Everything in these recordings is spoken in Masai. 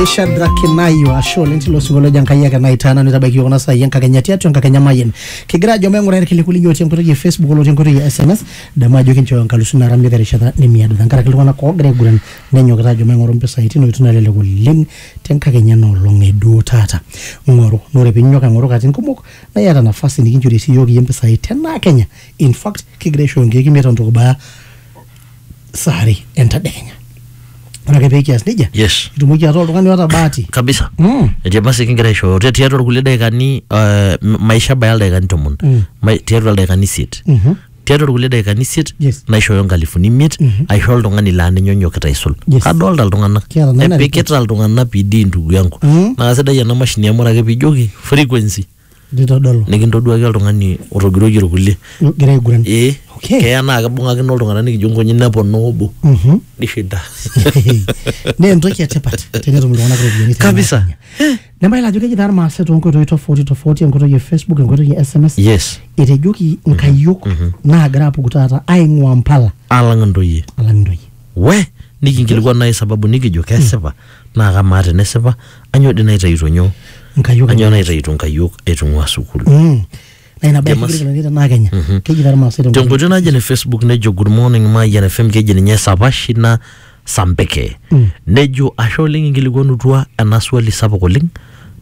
eishadrakinayo ashe oleng tilo singolio lojo enkai ake naitaana nitabaiki yiok kuna saai enkakenya tiatua enkakenya mayian kigira ajo maing'ura irkiliku linyi otii enkoitoi e facebook olotii enkoitoi e sms damu ajo kinchooyo enkalusu naara miata erishata nimiado tenkaraki iltung'anak oogira aiguran nenyokita ajo maing'oru mpisai tino oitoi nalelek oleng tenkakenya ena olong e duo taata ng'oru naa ore piinyok aing'oru katitin kumok naa iyata nafasi nikinchori sii yiok iyie mpisai tenaa kenya in fact kigira aishooyo nkeek imiet o ntoki ibaya saa are entadekenya ore ake pekias nejia yes itumoki ataa oltung'ani oota bahati kabisa mm. etii emasi kigira aishooyo Ti- tiatua irkulie daikani eh, m- maisha baya ildaikani tomon Mm. Ma- tiatua ildaikani isiet Mhm. tiatua irkulie daikani isiet Yes. naishooyo nkalifuni imiet aisho oltung'ani laa ninye onyokita aisul Yes. kadolta iltung'anak Kiata nena epikita iltung'anak pidi ndugu yangu Mm. naa sidai ena mashini amu ore ake pijoki frequency Nitodolu. nikintoduaki oltung'ani otogiroyie irkulie Nigira aiguran. ee Okay. keya naa kibung'akino iltung'anak nikijo nkonyek neponaa obo Mhm. nishinda Naa entoki etipat tenetum iltung'anak iropiyiani. te Kabisa. Kenya. Nebaiki ajo keji taa irmaasai too nkoitoi tofauti tofauti enkoitoi e Facebook enkoitoi e SMS. yes Etejoki nkayiok naagira apuku taata aing'ua mpala alang intoyie alang intoyie. we nikinkilikuan naaji sababu nikijo kesipa naa kamaa tenesipa anyoo dii naitayuto nyoo Nkayiok anyoo naitayuto nkayiok aitung'ua sukuul Mm. Na ina bae Jamas. kigirita ninye tenaa Kenya. Keji taa Irmaasai tenkutuk. tenkoitoi naje ne facebook nejo good morning mayian fm keji ninye sapashina sampeke nejo ashe oleng inkilikuanutua ena swali sapuk oleng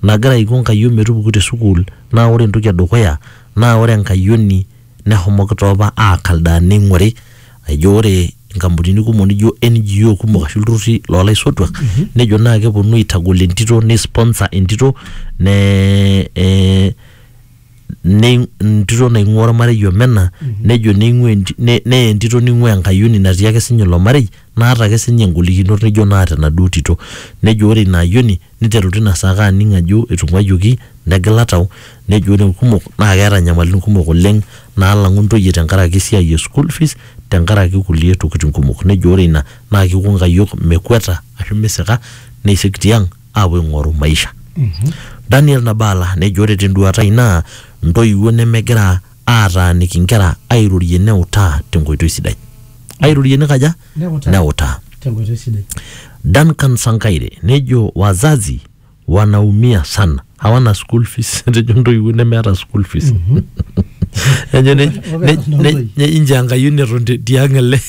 nagira aiko nkayiok metupuku te sukuul naa ore entoki edukuya naa ore enkayioni Nehomoki taa opa aakaldaa neing'ori ajo ore nkampunini kumok nijo NGO kumok ashu ilturrurri loo laisotuak nejo naa keponu aitagol entito neisponsor entito ne eh, nei- entito naing'ua ormarei omena nejo neing'ua enti- ne- neye entito neing'ua enkayioni natii ake sinye ilo marei naata ake sinye ingolikinot nijo naata enaduo tito nejo ore ina ayioni Neiteru tina saa ake aning ajo eitung'uayioki negila tau nejo ore ilkumok naa keeta inyamalitin kumok oleng naalang'u intoyie tenkaraki esiai e school fees tenkaraki kulie tokitin kumok. Nejo ore ina naa keiko inkayiok mekweta ashu misika neisik tiang aapuo aing'oru maisha. Daniel Nabala nejo ore tenduaata ai naa intoiwuo nemegira aataaniki inkera airorie neutaa tenkoitoi sidai. Airorie nikaja? neutaa. Duncan Sankaire nejo wazazi wanaumia sana hawana school fees etejo ntoiwuo nemeeta school fees ejo ne- ne- ne- ne- inji Enkai neton te- tiang ele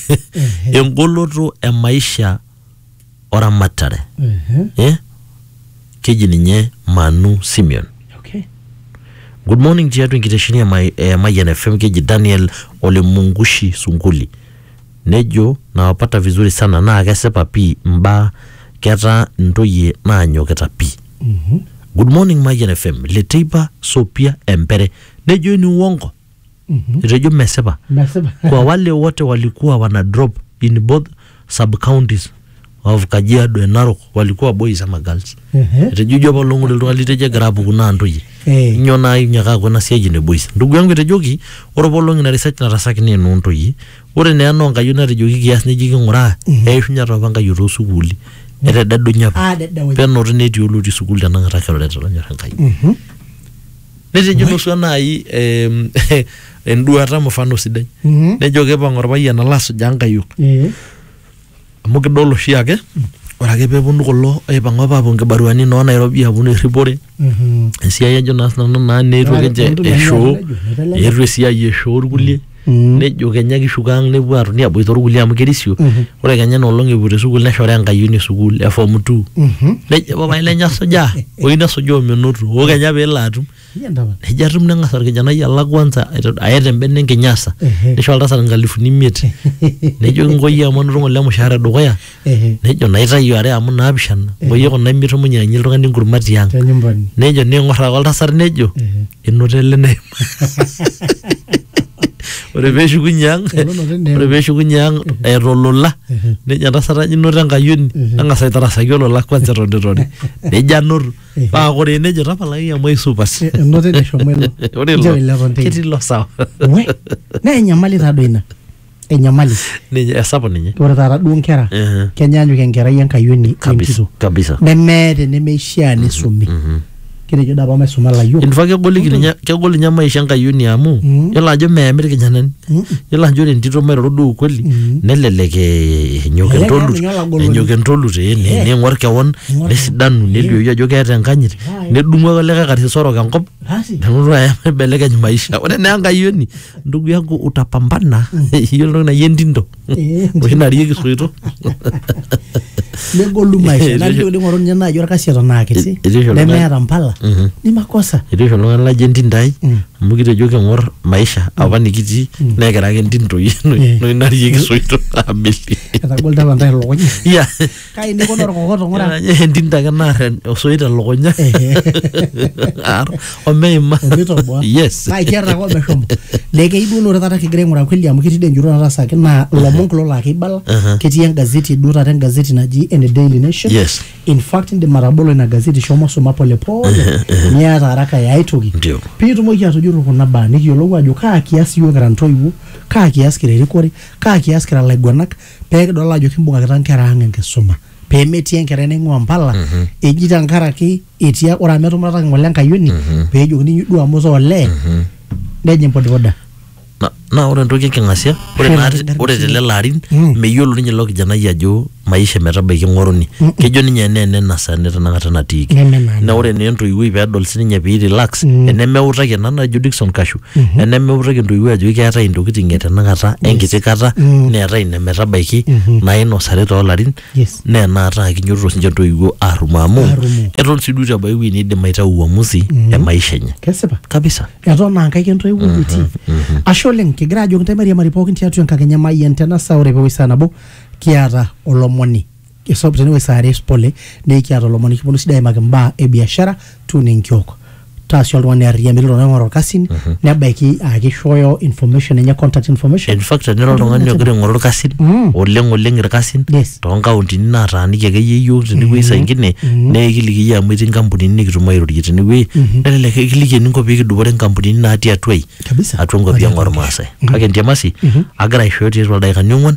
engoloto e maisha oramatare Mhm. eh? keji ninye manu simeon Okay. good morning tiatua enkitesheni e Mai- e mayian fm keji daniel olemungushi sunguli nejo nawapata vizuri sana naa kesipa pii mbaa ketaa ntoyie naanyokita pii good morning mayian fm leteipa sopia empere nejo ini uongo etejo mesipa mesipa kwa wale wote walikuwa wana drop in both sub counties of Kajiado and Narok walikuwa boys ama girls Ehe. etejo ijo apa olong'ole oltung'ani litejo egira apuku naa ntoyie Eh. nyoo naa inyiaka aaku ena siai ene boys ndugu yangu etejoki ore apa olong ina research natasaki naa enoo ntoyie ore naa enoo nkayiok natejoki kias neji king'uraa eishunye taa apa nkayiok too sukuuli etededunye apa Ah, dedewunya. penoti netii olotii sukuul tenakata kiroreta lonyor enkai Mhm. netejo nusu enai em, enduata mfano sidai Mhm. nejo kipang orpayian alo asujaa nkayiok Eh. amu kidol oshiake ore ake peponu kulo aipang apa apuo nkibaruani noo nairobi aponu erripore Mhm. esiai ajo naa sinanu naa neetuo Naa, kinche entoki naijo eshoo netejo, netejo. eetuo esiai eshoo irkulie Mm. nejo kenya kishuko ang nepuo atoni aboita orkulie amu kerisio ore kenya ina olong epuo te sukuul neshora enkayioni e sukuul e form two Mhm. nejo papai lenye asujaa oyieu nesujaa omenoto oo kenya peelo atum Iya ndaba. nejo atum neng'as orkijanai alak kwanza aiteru- aya te mbene enkinyasa Ehe. nisho oltasat inkalifuni imiet nejo kinkoyie amu anoto ng'ole emushaara edukuya Nejo, Naitayu are amu naapishana, ngoyie kuna imitum inyiang'akinye oltung'ani enkurma tiang. Te nyumbani. Nejo, Neing'or ake oltasat nejo, Enoto ele neima. Ore pee eshukunye ang, Enoto eneima. ore pee eshukunye ang eeta olola, nejo entasat ajo inoto enkayioni, eng'as aitarasaki olola kwanza eton eitu irori. Nejo anoto. Paa ore ene nejo tapalaki amu aisupat. Enoto eneshomo ilo. Ore Nchoo ilo ilo eton teine. ketii ilo sawa. We, naa enyamali taa doi ina. enyamali ninye esapuk ninye ore taata duo nkera Ehe. kenyaanyuk enkerai enkayioni kabisa wenkito kabisa nemeeta enemeishaa nisumi kitejo dapa maisuma layiok infact kegoliki ninye kegol ninye maisha enkayioni amu Mm. yiolo ajo meemi irkijanani Mm. yiolo ajo ore entito mairoro duo ukweli Mm. nelelek eh, enyok Elelek entolut ninye olagoloni. enyok entolut eh, ni- Eh. ning'or kewon Ning'or nesidanu kewon. nelioyu ajo keeta enkanyit Right. nedung'u ake likae karsis orok enkop Basi. nelotu aya ibelekeny maisha ore naa enkayioni ndugu yangu utapambana hiyo ndio na yendindo Eh, oshi narieki soito negolu maisha Eh, nalio etisho- ling'oru ninye naaji orkasi eton aa kiti Etisho oltung'ani. nemeeta mpala Mhm. ni makosa etii oshi oltung'ani lajo entindai Mm. amu kitejo king'or maisha apa nikitii nekira ake entindoi Eh. noi narieki soito abili etagolita apa ntae lukunya ya kai neikono orkokoto ng'ura entinta ake naar en- osoit elukunya Aar, omeima omitoboa yes naa ikiata ake omeshomo naa keyieu duo ore taata kigira aing'uraa kweli amu ketii dee enjurro natasaki naa ilomon kulo laa keibala Aha. ketii engazeti duo taata engazeti naji ene daily nation Yes. in fact indim atabolo ina gazeti shomo suma polepole niata haraka ya aitoki Ndio. piitumoki atujurru kuna baa nikiyiolou ajo kaa kias iyiook kira ntoiwuo kaa kias kira erikore kaa kias kira laiguanak pee kidol ajo kimbung'akita nkera ang enkisuma pee metii enkerai naing'ua mpala eji tenkaraki etii ore amu etumurataki ng'ole enkayioni pee ejokini inyi duo amu itaa olee nejing bodaboda Na- naa ore entoki enking'asia ore Ore naa te- entoki ore enking'asia. telelo arin Mm. meyiolo ninye ilo kijanai ajo maisha metabaiki ng'oruni kejo ninye enaa ene nasa ene tenakata natiiki Neme naa ina. na ore naa entoiwuoi pedol sininye pei relax Mm. enemeutaki ena najo Dickson Kashu mm-hmm. enemiutaki intoiwuo ajoki keetae intokitin e tenakata yes. enkiti kata mm-hmm. neetae ine metabaiki mm-hmm. nainosari toolarin yes. naa enaata akinyototo sinche intoiwuo arrumo amu eton sii duo itu ebaiki ewueji niidim aitau uamusi mm-hmm. e maisha enye kesipa kabisa eton aa nkaik entoiwuo mm-hmm. etii mm-hmm. ashe oleng kigira ajoki ntae mairiamari pookin tiatua enkakenya mayian tena saa ore peewoi saa nabo kiata olomoni Esop tenewueji saa are pole naa ekiata olomoni nikiponu sii aimaki imbaa e biashara tuuno enkiok. Taa sii oltung'ani arriyia metii iltung'anak oing'oru irkasin nebaiki aa kishooyo information enye contact information. In fact tenira oltung'ani ogira aing'oru irkasin Mm. oleng oleng irkasin Yes. toonkauntini naataaniki akeyie iyiook tenewueji saa ingine naa ekiliki iyie amu etii inkampunini nikitum airorie tenewueji nelelek ekiliki eninko pee kidupore inkampunini naatii atua ai Kabisa. atua inkuapi ang ormaasai kake entiamasi agira aishooyo tiatua ildaikani ong'wan